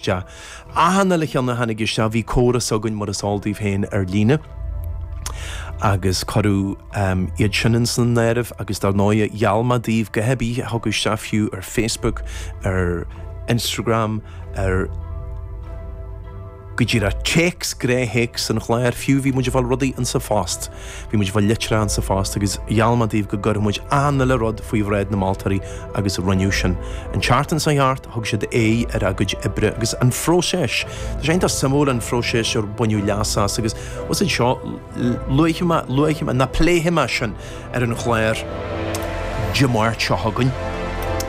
Sea, achan uile cheann a tháinig isteach, bhí córas againn, mar is eol daoibh féin, ar líne, agus cuireadh iad sin insan áireamh, agus dar ndóighe, gheall mé daoibh, go háirithe tugadh isteach fiú ar Facebook, ar Instagram, ar go díreach téacs, gré théacs an chláir fiú, bhí muid ag fáil rudaí ansin fosta. Bhí muid ag fáil litreacha sa phost agus gheall mé daoibh go gcuirfeadh muid achan uile rud faoi bhráid na moltóirí agus rinneadh sin. An tseachtain seo thart, thug siad aghaidh ar a gcuid oibre agus an phróiseas. Tá sé iontach suimiúil an phróiseas ar baineadh leas as agus úsáid as, luafaidh mé, luafaidh mé, ná pléifidh mé sin ar an chlár Dé Máirt seo chugainn.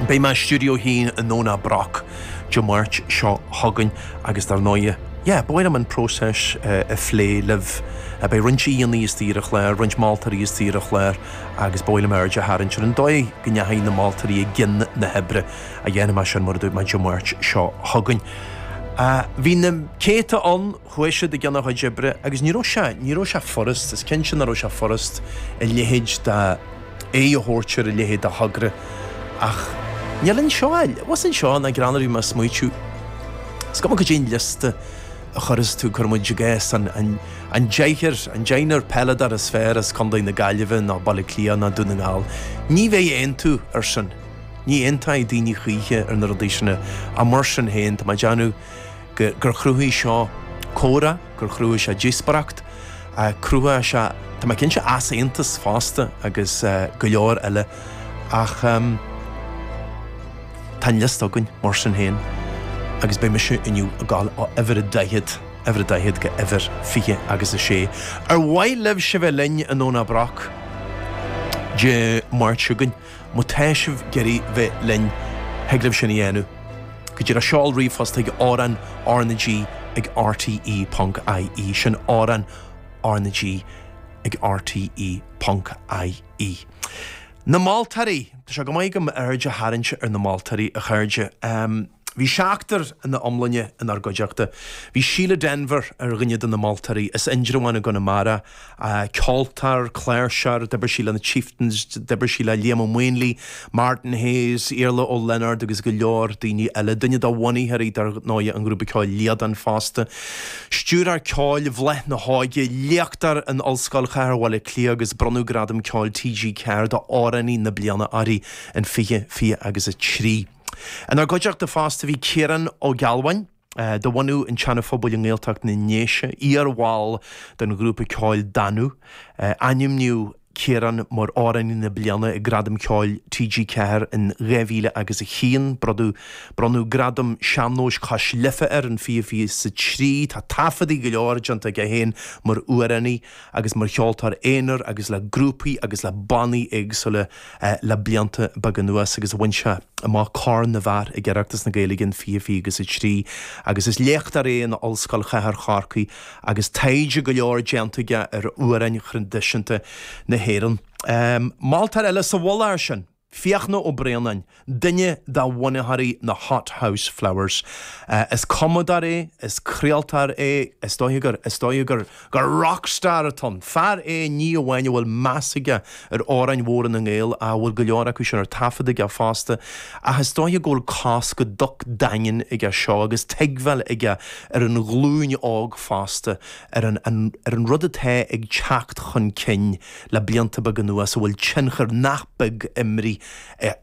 Beidh mé i stiúideo a haon i nDomhnach Broc. Dé Máirt seo chugainn agus dar ndóigh, yeah, ba mhaith liom an próiseas a phlé libh. Beidh roinnt aíonna istigh ar an chlár, roinnt moltóirí istigh ar an chlár agus ba mhaith liom aird a tharraingt ar an dóigh a ndeachaigh na moltóirí i gcionn na hoibre. Déanfaidh mé sin mar a dúirt mé Dé Máirt seo chugainn. Bhí na céadta ann Chuaigh siad i gcionn a gcuid oibre agus ní raibh sé, ní raibh sé furast, is cinnte nach raibh sé furast a leithéid de, aghaidh a thabhairt ar a leithéid de thogra ach níl ann seo ach siamsa ná greann. Bhí mé a smaoitiú. Is cuma cad é an liosta a chuireas tú, cuirfidh muid i gcás, an, an, an deichniúr, an deichniúr peileadóir is fearr as Contae na Gaillimhe ná Baile Átha Cliath ná Dún na nGall. Ní bheidh aontú ar sin. Ní aontóidh daoine choíche ar na rudaí sin. Ach mar sin féin, tá mé ag déanamh, gur chruthaigh seo comhrá, gur chruthaigh sé díospoireacht, chruthaigh sé, tá mé cinnte, easaontas fosta agus go leor eile ach tá an liosta againn mar sin féin agus beidh mise inniu ag dul ó uimhir a daichead, uimhir a daichead go uimhir fiche agus a sé. Ar mhaith libhse bheith linn i nDomhnach Broc Dé Máirt seo chugainn? Má tá sibh ag iarraidh bheith linn, thig libh sin a dhéanamh go díreach seol ríomhphost chuig amhrán R na G ag rte.ie. Sin amhrán R na G ag rte.ie. Na moltóirí! Tá sé chomh maith agam aird a tharraingt ar na moltóirí, a chairde. Bhí seachtar ina iomláine inár gcuideachta. Bhí Síle Denvir ar dhuine de na moltóirí, as Indreabhán i gConamara, ceoltóir, cláirseoir, d'oibir sí le na Chieftains, d'oibir sí le Liam Ó Maonlaí, Martin Hayes, Iarla Ó Lionáird agus go leor daoine eile. Duine de bhunaitheoirí, dar ndóigh, an ghrúpa ceoil Liadán fosta. Stiúrthóir ceoil i bhFéile Liú Lúnasa, léachtóir in Ollscoil Chathair Bhaile Átha Cliath agus bronnadh Gradam Ceoil TG4 d'Amhránaí na Bliana uirthi in 2023. Inár gcuideachta fosta bhí Ciarán Ó Gealbháin, de bhunadh an tSeana Phobail i nGaeltacht na nDéise, iar-bhall den ghrúpa ceoil Danú. Ainmníodh Ciarán mar Amhránaí na Bliana ag Gradaim Ceoil TG4 in 2000 agus a haon, bronnadh Gradam Sean-nóis Cois Life air in 2023. Tá taifeadaí go leor déanta aige féin mar amhránaí. agus mar cheoltóir aonair agus le grúpaí agus le bannaí éagsúla le blianta beaga anuas agus a bhain sé amach Corn na bhFear ag Oireachtas na Gaeilge in 2023 agus is léachtóir é in Ollscoil Chathair Chorcaí agus taighde go leor déanta aige ar amhráin thraidisiúnta na hÉireann. Moltóir eile sa mhullach air sin. Fiachna Ó Braonáin, duine de bhunaitheoirí na Hothouse Flowers. Is cumadóir é, is craoltóir é, is dóiche gur, is dóiche gur, gur rock star atá ann. Fear é ní amháin a bhfuil meas aige ar amhráin mhóra na nGael, a bhfuil go leor acu sin ar taifead aige fosta, ach is dóiche go bhfuil cos go docht daingean aige seo agus tuigbheáil aige ar an ghlúin óg fosta, ar an, ar an rud atá ag teacht chun cinn. le blianta beaga anuas a bhfuil tionchar nach beag imrithe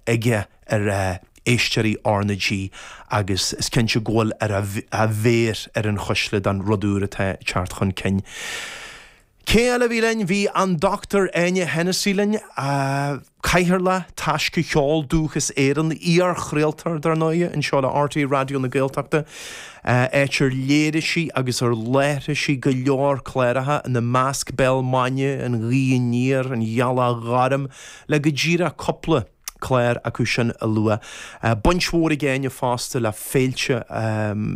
aige ar éisteoirí R na G agus is cinnte go bhfuil ar a mhéar ar an chuisle don rud úr atá ag teacht chun cinn. Cé eile a bhí linn? Bhí an Dr Áine Hensey linn. Cathaoirleach Taisce Cheol Dúchais Éireann, iar-chraoltóir, dar ndóigh, anseo le RTÉ Raidió na Gaeltachta, áit ar léirigh sí agus ar láithrigh sí go leor cláracha, ina measc Béal Maidine, An Ghaoth Aniar, An Ghealach Ghorm, le go díreach cúpla clár acu sin a lua. Baint mhór ag Áine fosta le féilte,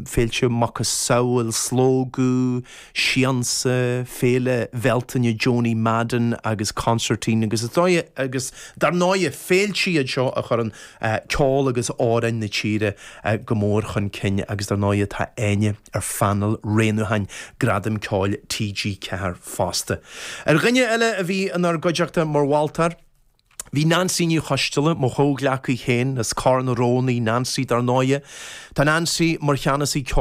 féilte macasamhail Slógadh, Siansa, Féile Bhealtaine Joanie Madden agus Consairtín agus agus dar ndóighe, féilte iad seo a chuireann ceol agus amhráin na tíre go mór chun cinn agus dar ndóighe tá Áine ar phainéal roghnúcháin Gradam Ceoil TG Ceathair fosta. Ar dhuine eile a bhí inár gcuideachta mar mholtóir, bhí Neansaí Ní Choisdealbha, mo chomhghleacaí féin as Cor na Rón í Neansaí dar ndóighe. Tá Neansaí mar Cheannasaí Ceoil,